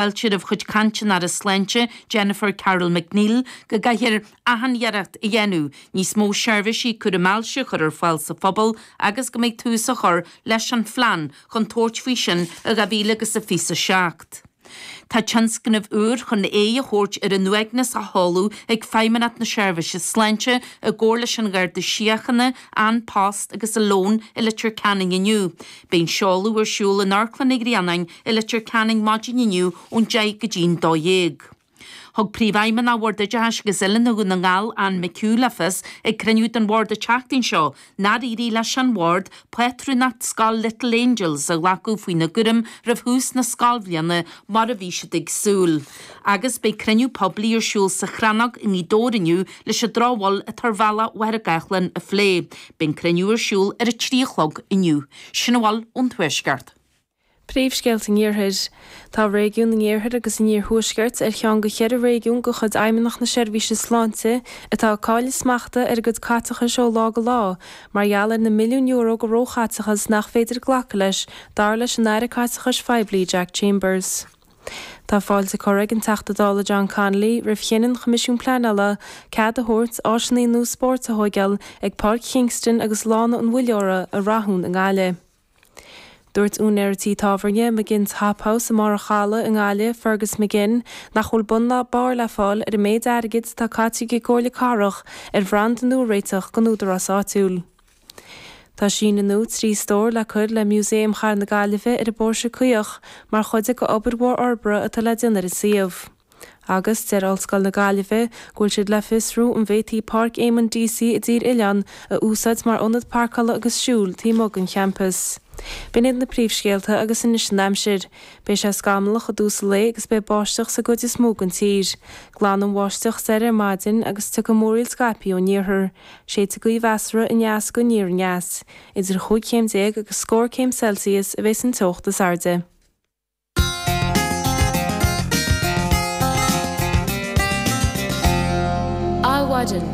Fáilte roimh chuid caint an Aire Sláinte, Jennifer Carroll MacNeill, go gcaithfear athiarracht a dhéanamh níos mó seirbhísí cúraim ailse a chur ar fáil sa phobal agus go mbeidh tús á chur leis an phlean chun tabhairt faoi sin i 2000 agus a fiche 7. Tá tionscnamh úr chun aghaidh a thabhairt ar an uaigneas á sheoladh ag Feidhmeannacht na Seirbhíse Sláinte i gcomhar leis an Gharda Síochána, An Post agus Alone i Leitir Ceanainn inniu. Beidh an seoladh ar siúl in Amharclann an Ghrianáin i Leitir Ceanainn maidin inniu ón deich go dtí'n dó dhéag. Thug Príomhfheidhmeannach Bhord Oideachais agus Oiliúna Dhún na nGall, Anne McHugh le fios ag cruinniú den Bhord an tseachtain seo nár éirigh leis an Bhord pátrúnacht scoil Little Angels a ghlacadh faoina gcúram roimh thús na scoilbhliana mar a bhí siad ag súil agus beidh cruinniú poiblí ar siúl sa Chrannóg i nGaoth Dobhair inniu leis an drochbhail atá ar Bhealach Mhachaire Gathlán a phlé. Beidh an cruinniú ar siúl ar a trí a chlog inniu. Sin a bhfuil ón Tuaisceart. Príomhscéal an Iarthair. Tá réigiún an Iarthair agus an Iarthuaiscirt ar cheann de cheithre réigiún de chuid Fheidhmeannacht na Seirbhíse Sláinte atá ag cailleadh smachta ar a gcuid caiteachais ó lá go lá mar gheall ar na milliúin euro de róchaiteachas nach féidir glacadh leis, dar leis an Aire Caiteachais Phoiblí, Jack Chambers. Tá fáilte curtha ag an Teachta Dála John Connolly roimh chinneadh an Choimisiúin Pleanála cead a thabhairt áiseanna nua spóirt a thógáil ag Páirc Kingston agus Lána an Mhuilleora i Rathún i nGaillimh. Dúirt úinéir tí tábhairne, McGinn's Hop House i mBarr a' Chalaidh i nGaillimh, Fergus McGinn, nach bhfuil bun ná barr le fáil ar an méid airgid atá caite ag an gComhairle Cathrach ar bhranda nua a réiteach don údarás áitiúil. Tá síneadh nua trí stór le cur le Músaem Chathair na Gaillimhe ar an bPóirse Caoch mar chuid d'obair mhór fhorbartha atá le déanamh ar an suíomh. Agus deir Ollscoil na Gaillimhe go bhfuil siad le fiosrú an bhféadfaí Páirc Éamonn Deacy i dTír Oileáin a úsáid mar ionad pairceála agus siúil taobh amuigh den champas. B'in iad na príomhscéalta agus anois an aimsir. Beidh sé scamallach i dtús an lae agus beidh báisteach sa gcuid is mó den tír. Glanfaidh an bháisteach soir ar maidin agus tiocfaidh múraíl scaipthe ón iarthar. Séidfidh gaoth mheasartha aneas go aniar-aneas. Idir chúig chéim déag agus scór céim Celsius a bheidh sa teocht is airde. Adhmhaidin.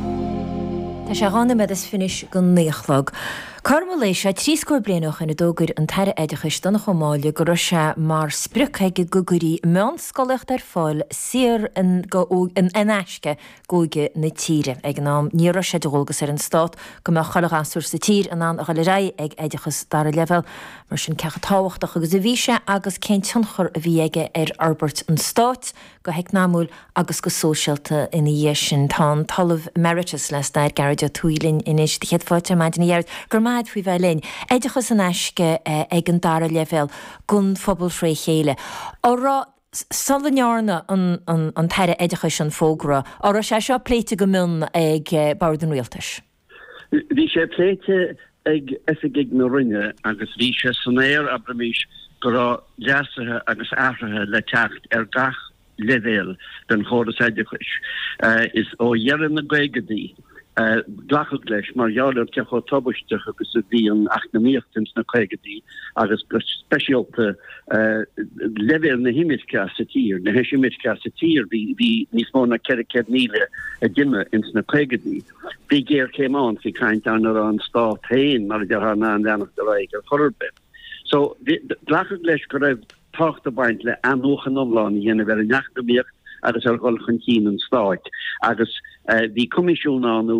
Tá sé dhá noiméad is fiche chun a naoi a chlog. Cothrom an lae seo trí scór bliain ó shoin a d'fhógair an tAire Oideachais, Donncha Ó Máille go raibh sé mar sprioc aige go gcuirfí meánscolaíocht ar fáil saor in aisce d'óige na tíre. Ag an am níor raibh sé de dhualgas ar an Stát go mbeadh chuile ghasúr sa tír in ann a dhul ar aghaidh ag oideachas dara leibhéal. Mar sin cé chomh tábhachtach agus a bhí sé agus cén tionchar a bhí aige ar fhorbairt an Stáit go heacnamaíoch agus go sóisialta ina dhiaidh sin? Tá an tOllamh Emeritus le Stair, Gearóid Ó Tuathaigh linn anois. Do chéad fáilte ar maidin a Ghearóid. Go raibh maith a'd faoi bheith linn. Oideachas in aisce ag an dara leibhéal don phobal thré chéile. Á rá. sula ndearna an tAire Oideachais an fógra, an raibh sé seo pléite go mion ag Bord an Rialtais? Bhí sé pléite ag oifigigh na Roinne agus bhí sé san aer, abraimís, go raibh leasuithe agus athruithe le teacht ar gach leibhéal den chóras oideachais. Is ó dheireadh na gcaogadaí. glacadh leis mar gheall ar cé chomh tubaisteach agus a bhí an eacnamaíocht ins na caogaidí agus go speisialta leibhéal na himirce as a tír, na heisimirce as a tír. Bhí bhí níos mó na ceithre céad míle a d'imigh ins na caogaidí. Bhí géarchéim ann, bhí caint ann a raibh an stát féin mar a déarfá in ann leanacht ar aghaidh ar chor ar bith. So glacadh leis go raibh tábhacht ag baint le athnuachan iomlán a dhéanamh ar an eacnamaíocht agus ar dhul chun cinn an stáit agus bhí coimisiún ann nó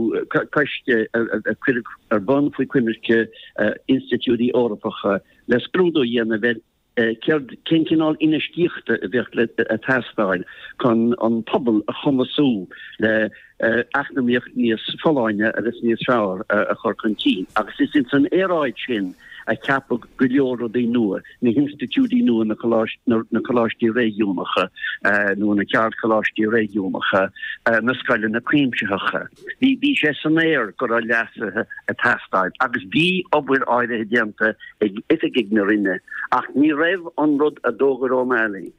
coiste a cuireadh ar bun faoi choimirce institiúidí Eorpacha le scrúdú a dhéanamh ar céard, cén cineál infheistíochta a bheadh le teastáil chun an pobal a chumasú le. eacnamaíocht níos folláine agus níos fearr a chur chun cinn. Agus is ins an aeráid sin a ceapadh go leor rudaí nua, na hinstitiúidí nua, na coláistí réigiúnacha nó na ceardcholáistí réigiúnacha, na scoileanna cuimsitheacha. Bhí sé san aer go raibh leasuithe ag teastáil agus bhí obair áirithe déanta ag oifigigh na Roinne ach ní raibh an rud a d'fhógair O'Malley,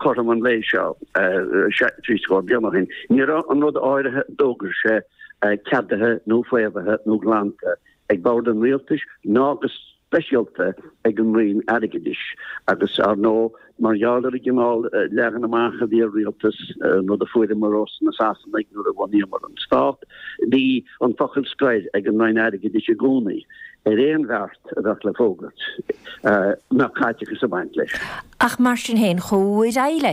cothrom an lae seo trí scór bliain ó shin, ní raibh an rud áirithe a d'fhógair sé ceadaithe nó faomhaithe nó glanta ag bord an Rialtais ná go speisialta ag an Roinn Airgeadais agus, ar ndóigh, mar gheall ar an gcineál leagan amach a bhí ar Rialtas, rud a fuaireamar ós na Sasanaigh nuair a bhunaíomar an Stát, bhí an focal scoir ag an Roinn Airgeadais i gcónaí. ar aon bheart a bheadh le fógairt, nó caiteachas ag baint leis. Ach mar sin féin, chuaigh ar aghaidh leis.